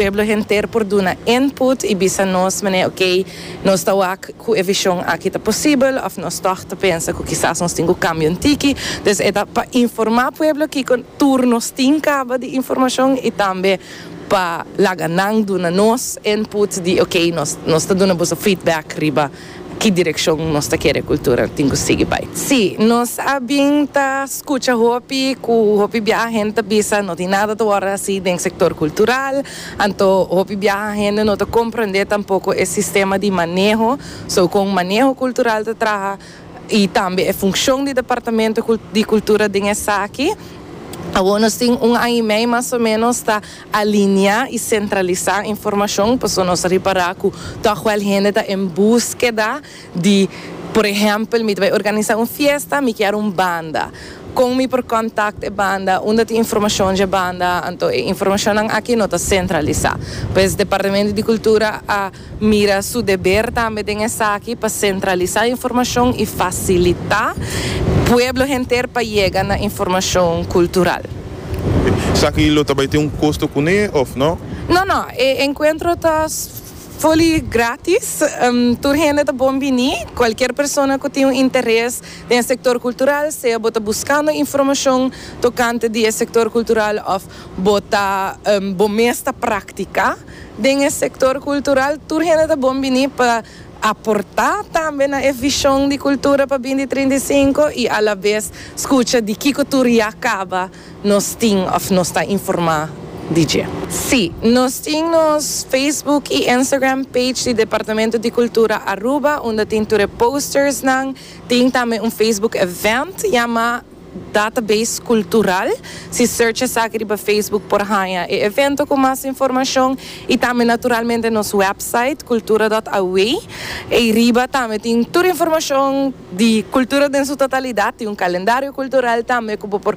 Pueblo henter por duna input y bisa nos manera ok, nos ta wak cu e vision aki ta posibel of nos tog ta pensa cu kisas nos tin cu cambia un tiki. Dus e ta pa informa pueblo kico tur nos tin caba di informacion y tambe pa laga nan duna nos input di ok, nos ta duna boso feedback riba. Ki direkshon nos ta kere kultura tin ku sigui bai? Sí, nos a bin ta skucha hopi ku hopi biaha hende ta bisa, no tin nada ta wòrdu hasi den sektor kultural. Anto hopi biaha hende no ta komprendé tampoko e sistema di maneho, so kon maneho kultural ta traha i tambe e funshon di departamento di kultura den esaki. Awor nos tin un aña i mei mas o menos ta. Alineá i sentralisá informashon pasobra nos a ripará ku tòg wèl hende ta en búskeda di, Por ehèmpel, mi ta bai organisá un fiesta, mi kier un banda. Kon mi por kòntakt e banda? Unda tin informashon dje banda? Anto e informashonnan akí no ta sentralisá. Pues Departamento di Kultura a. mira su deber tambe den esaki pa sentralisa informashon i fasilita pueblo henter pa yega na informashon kultural. Esaki lo ta bai tin un kosto kuné òf nò? No, no. E enkuentro ta fully grátis. Tur hende ta bon bini. Kualkier persona ku tin un interes den e sektor kultural, sea bo ta buskando informashon tokante di e sektor kultural òf bo ta bo mes ta praktiká, Den e sektor kultural tur hende ta bon bini pa aportá tambe na e vishon di kultura pa binti trinta i sinku i alabes skucha di kiko tur ya kaba nos tin òf nos ta informá di dje. Sí, nos tin nos Facebook i Instagram page di Departamento di Cultura Aruba unda tin tur e postersnan, tin tambe un Facebook event yamá. Database Cultural. Si search esaki riba Facebook por haña e evento cu mas informacion y tambe naturalmente nos website cultura.aw. Ey riba tambe tin tur informacion di Cultura den su totalidad, tin un calendario cultural tambe cu bo por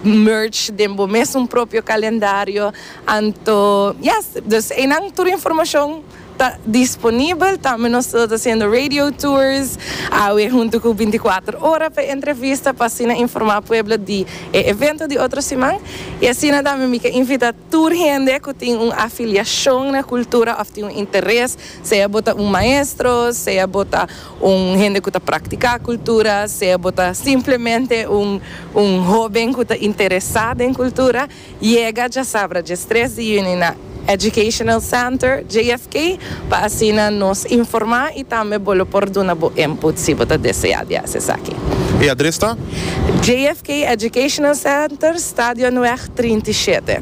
merge den bo mesun propio calendario. Anto yes, dus eynan tur informacion. ta disponibel, tambe nos ta hasiendo radio tours awe hunto cu binti kuater ora pa e entrevista pa asina informa pueblo di e evento di otro siman. Y asina tambe mi ta invita tur hende cu tin un afiliacion na cultura of tin un interes, sea bo ta un maestro, sea bo ta un hende cu ta practica cultura, sea bo ta simplemente un un hoben cu ta interesa den cultura, Yega djasabra dje stres di juni na Educational Center, JFK, pa asina nos informá i tambe bo lo por duna bo input si bo ta deseá di hasi esaki. E adres ta. JFK Educational Center, Stadionweg trinta i shete.